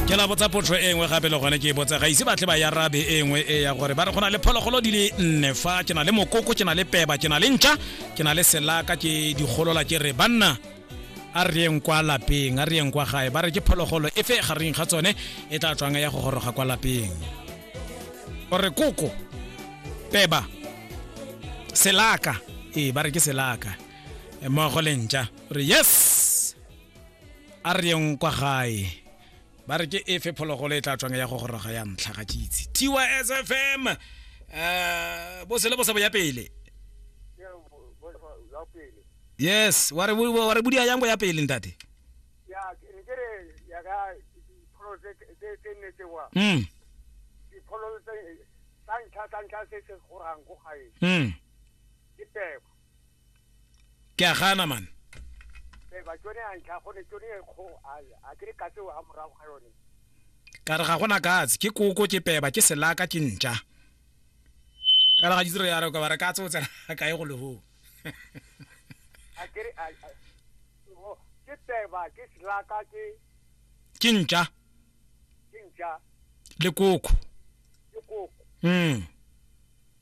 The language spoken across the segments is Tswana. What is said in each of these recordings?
ke la botsa potso e nngwe gape le gone ke e botsa ga ise batle ba yarabe e nngwe e ya gore ba re go na le phologolo di le nne fa ke na le mokoko ke na le peba ke na le ntšha ke na le selaka ke digolola ke re banna a re yeng kwa lapeng a re yeng kwa gae ba re ke phologolo e fe gareng ga tsone e tla tswang ya go goroga kwa lapeng o re koko peba selaka ee ba re ke selaka mmogo le ntšha re yes a re yeng kwa gae ba re ke efe phologolo e tla tswang ya go goroga ya ntlha ga kitse tys fm um bo sele bo sa bo ya pele yes wa re bu- wa re budia yang bo ya pele ntate ya ke ne ke re ya ka dipholo tse tse tse nne tsewa mm dipholo tse tsa ntlha tsa ntlha se se gorang ko gae mm ke peko ke a gana man ee ba tsone a ntlha gone tsone e kgo a ke re ka tseo a morago ga yone ka re ga gona katse ke koko ke peba ke selaka ke ntša ka re ga ditiro ya re ka ba re katse o tsena ka e go leho a ke re ke peba ke selaka ke ke ntša ke ntša le koko le koko mm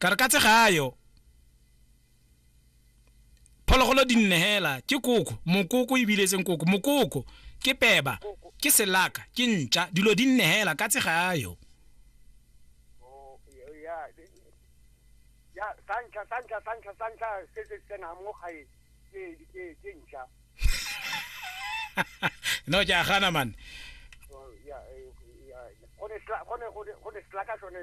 ka re ka tsegayo phologolo di nne hela ke koko mokoko ebile e seng koko mokoko ke peba ke selaka ke ntša dilo di nne hela ka tsegayo Oh, ya- ya- ya sa ntlha sa ntlha sa ntlha sa ntlha se se tsenang mo gae ke ke ke ntšha no ke a gana mane Oh, ya- eh, ya- go ne sla- go ne- go ne- go ne selaka sone